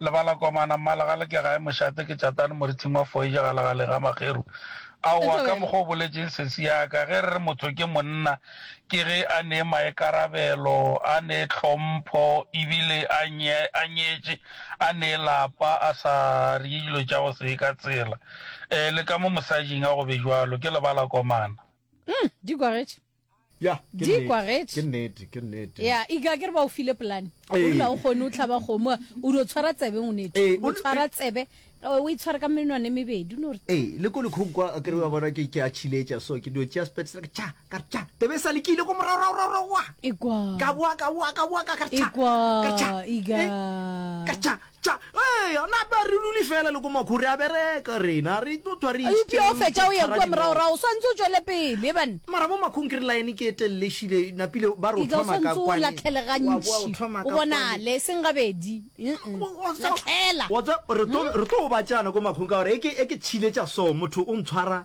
Lebala komana mmala ga le ke gae mošate ke tšatane morithing wa foeja ga legaleng ga mageru aowa ka mokgwa o boletšeng sesi ya ka ge re re motho ke monna ke ge a nee maekarabelo a nee tlhompho e bile a a nyetše a nee lapa a sa rye dilo tša go se ka tsela um le ka mo mosajing a go be jwalo ke lebala komana. Umm di gogetše ya ke Di nnete, kwagetše. ke nnete ke nnete ya ika ke re ba o file polane o Ee. dula o kgone o tlhaba kgomo o dio tshwara tsebe o nete Ee, o o- tshwara tsebe o o e tshwara ka menwane e mebedi o no re ee le ko lekhong kwa a kere wa bona ke ke a chiletša so ke dio tšea spetsela ke tša ka re tša tebe e sa le ke ile ko moragoragoragoragoa ekwa ka boa ka boa ka boa ka ka re tša ekwa ka re tša ika Eh, ka re tša Tša, Eya, na ba re dule fela le ko makhu, re a bereka rena, re tlo thwa re Eupša o ešiteng fetša o ye tshwara kua dinoka. moragorago, o swantse o tšwele pele, banna. Mara bo makhung ke re line ke e telele e šile, napile ba re o Ika o thoma ka swantse o kwane, wa boa o latlhelegantši, thoma o ka kwane. bonale, e seng gabedi. Mm-mm. Wa tseba- Latlhela. wa tseba, re tlo re tlo obatšana ko makhung ka gore e ke e ke tšhile tša so motho o ntshwara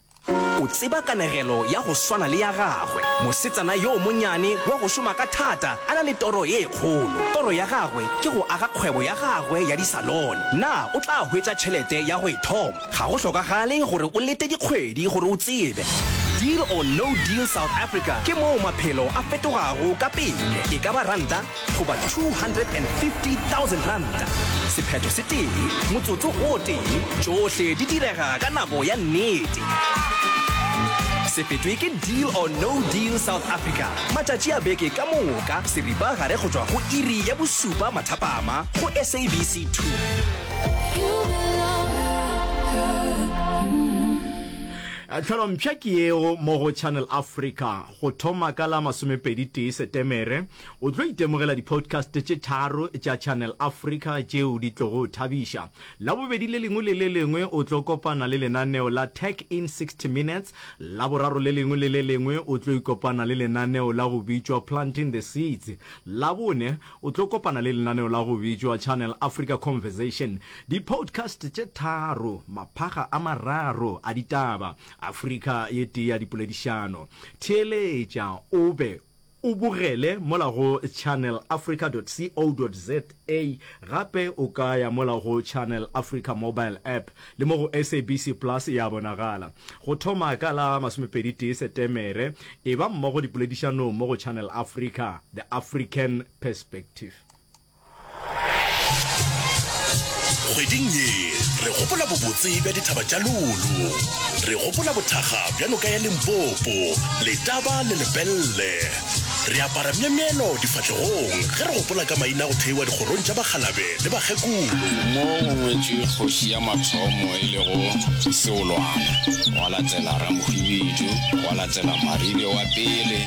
O tseba kanegelo ya go swana le ya gagwe, mosetsana yo monyane wa go šoma ka thata a na le toro ye kgolo. Toro ya gagwe ke go aga kgwebo ya gagwe ya disalone. Na o tla hwetša tšhelete ya go e thoma? Ga go hlokagale gore o lete dikgwedi gore o tsebe. Deal or No Deal South Africa ke moo maphelo a fetogago ka pele. E ka ba ranta goba R250,000. Sephetho se tee, motsotso o tee, tšohle di direga ka nako ya nnete. Se fetwe ke Deal or No Deal South Africa, matšatši a beke ka moka, seripagare go tšwa go iri ya bošupa mathapama go SABC 2. Tlhalompsha ke yeo mo go Channel Africa go thoma ka la masomepedi tee Setemere. O tlo itemogela di-podcast tše tharo tša Channel Africa tšeo di tlogo o thabiša. Labobedi le lengwe le le lengwe o tlo kopana le lenaneo la Tech in 60 Minutes. Laboraro le lengwe le le lengwe o tlo ikopana le lenaneo la go bitšwa Planting the Seeds. Labone o tlo kopana le lenaneo la go bitšwa Channel Africa Conversation. Di-podcast tše tharo, maphaga a mararo a ditaba, Afrika ye tee ya dipoledišano. Theeletša o be O bogele mola go channelafrica.co.za gape o ka ya mola go Channel Africa mobile app le mo go SABC Plus e a bonagala. Go thoma ka la masomepedi tee Setemere, eba mmogo dipoledišanong mo go Channel Africa, The African Perspective. Kgweding ye, re gopola bobotse bja dithaba tša Lolo. Re gopola bothakga bja noka ya Limpopo, Letaba le Lepelle. Re apara myemyelo difahlegong ge re gopola ka maina a go theiwa dikgorong tša bakgalabe le bakgekolo. Mo go ngwetšwe kgoši ya mathomo e lego Seolwana, gwa latela Ramhwibidu, gwa latela Maribe wa pele,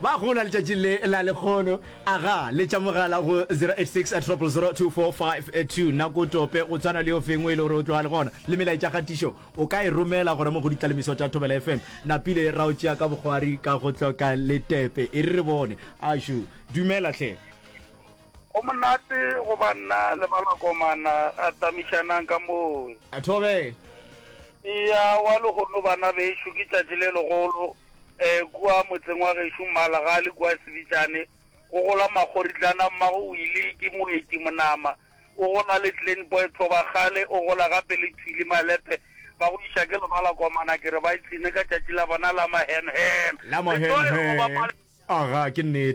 Ba gola letšatšing le la lekgono. Aga, letša mogala go 0860002452. Nako tope go tshwana le yo fengwe e le gore o tloga le gona. Le melaetša kgatišo o ka e romela go ramo go ditlalemiso tša Thobela FM. Napile ra o tšea ka bokgwari ka go hloka letepe. E re re bone. Ašu, dumela hle. Go monate go ba nna le balakomana ra tamišanang ka moo. A thobela. Eya wa lehono bana bešo ke tšatši le legolo um kua motseng wa gešo Mmalagali kua Sebitšane go gola Makgoritlana mmago o ile ke moeti monama o gola le Clean Boy Thoba kgale o gola gape le Thwili Malepe ba go iša ke lebalakomana ke re ba ipshine ka tšatši la bona la mahenhen. La mahenhen. Aga ke nnete.